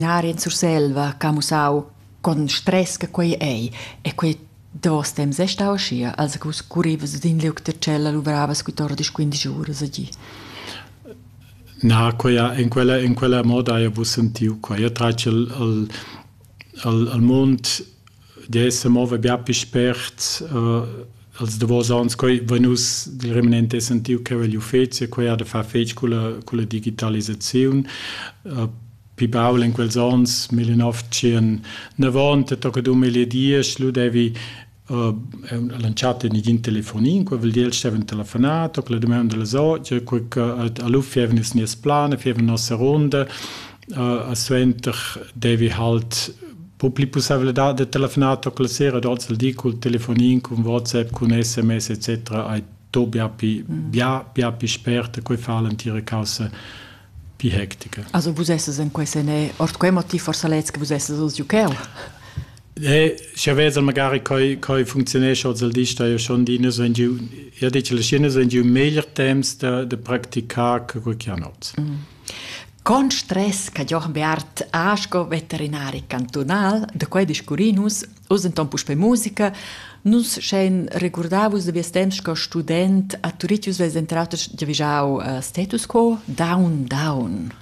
L'aria in Surselva che ha mussau con stress che quei ei e quei dos temps è stau aschia, als che vus currivas sin liug da tschella luvravas quit'ora dis quindici uras a gi. Na, quella, in, quella, in quella moda hai vus sentiu quai. Io tratg il, il, il mund d'esser mova bia più spert uh, als davos ans quei venus di remanente sentiu che il ufficio quei ha da far fetg con la, con la digitalisazione uh, pi baul in quels ans 1990 tocca 2010 lu devi uh, lanciato nigin telefonin, quel vuol dir steven telefonato, la domanda la so, cioè quel che all'uffi avnis nies plan, fieva nostra ronda, uh, suenter devi halt po pli pussevladad da telefonar toca la sera dort al di col telefonin con WhatsApp con SMS etc ai to bia pi mm. bia bia pi sperta quei fa l'antira causa pi hectica also vus esses in quei sene ort quei motiv forse lez che vus esses os juceu Ne, se vezel magari coi coi funzionesce al dista io schon di ne so in giu ja dice la scena so in giu meglier temps da da practicar che quel che hanot. Mm. Con stress cha Jochen Beat ha sco veterinari cantunal, da quai discurrin nus oz enton puspei musica. Nus schein regurdar vus da vies temps sco student a Turitg, vus veis denter auter giavischau uh, status quo, down, down.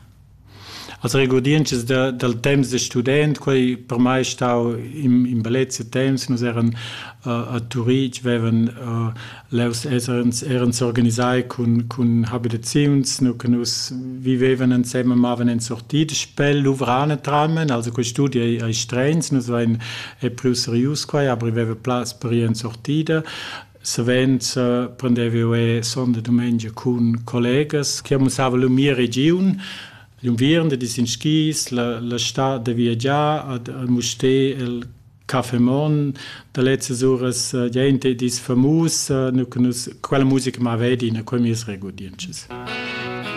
Also regurdientsches da, dal temps da student, quei per mai stau in, in bellezia temps, nus eran uh, a Turitg, vevan uh, Levs eran s'organisai cun, cun habitaziuns, nu che nus vivevan ensemen, mavan en sortit, spel luvrane tramen, also quei studi ei, ei streins, nus vein è più serius quai, aber veva plaz per ir en sortida. Savens uh, prendevo e sonda domenica cun collegas che mussava la mia region, l'unviern, di sin skis, la, la stad da viagiar ad, al mustè, el Caffè Mon da lezzas uras uh, gente dis famus uh, nu nus quella musica ma vedi in quei mies regodientschas.